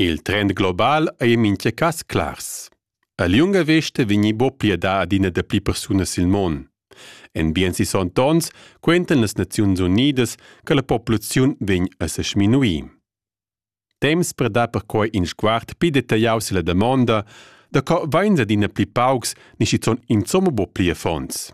Il trend global ei en mintga cass clars. A liunga vesta vegni buca pliedà adina da pli persunas sil mon. En bien sis onns quentan las Naziuns Unidas che la populaziun vegn a se sminuir. Temps per dar perquai in sguard pli detagliau silla damonda da co vains adina pli paucs ni schizun insomma bo pli affons.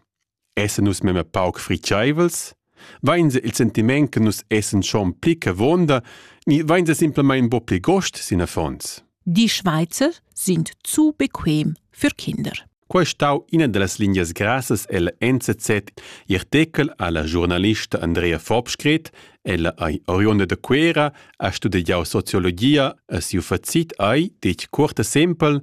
essan nus memia pauc fritscheivels? Vainsa il sentiment che nus essan schon pli cavonda ni vainsa simplamain bo pli gost sin affons? Die Schweizer sind zu bequem für Kinder. Quai è stau ina dallas lingias grassas ella NZZ i artechel alla giornalista Andrea Fobskret, ella ei oriunda da Cuera, ha studiau sociologia e siu facit ei detg cuorta sempel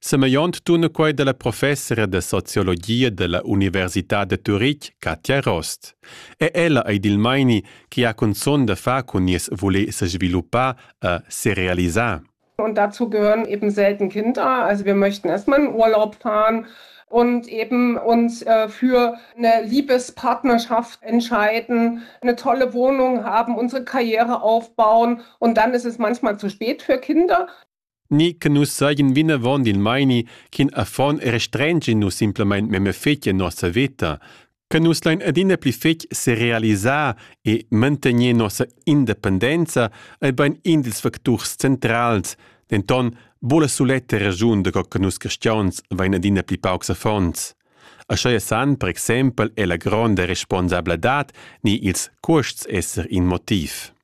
Semegliont tuna quei dalla professora da sociologia dalla Università da Turitg, Katja Rost. E ella ei dil meini che ha cunzun da far cun nies voler sesviluppar e serealisar. Und dazu gehören eben selten Kinder. Also wir möchten erstmal in Urlaub fahren und eben uns äh, für eine Liebespartnerschaft entscheiden, eine tolle Wohnung haben, unsere Karriere aufbauen und dann ist es manchmal zu spät für Kinder. ni che nus seigien vinavon dil meini ch'in affon restrengi nus simplamain memia fetg en nossa veta, che nus lein adina pli fetg serealisar e mantegner nossa independenza ei bein in dils facturs centrals, denton buca la suletta raschun da co che nus cristians vein adina pli paucs affons. Aschia san per exempel è la gronda responsabladad ni ils cuosts esser in motiv.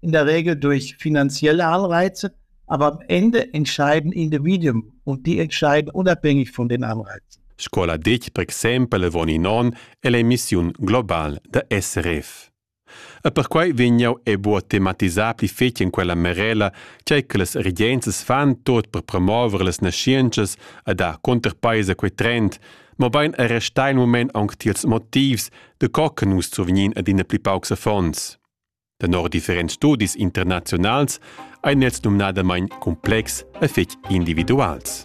in der Regel durch finanzielle Anreize, aber am Ende entscheiden Individuen und die entscheiden unabhängig von den Anreizen. Scola dic, per exempel, von in on, è l'emissiun global da SRF. E perquai vegnau e buca tematisà pli fetg in quella merela, tgei che las regenzas fan tot per promover las nascientschas e dar conterpaisa quei trend, mobein e restar in moment aunc tiels motivs, de co che nus survegnin ad ina pli paucs affons. Tenor differents studis internaziunals ein els numnadamain cumplex e fetg individuals.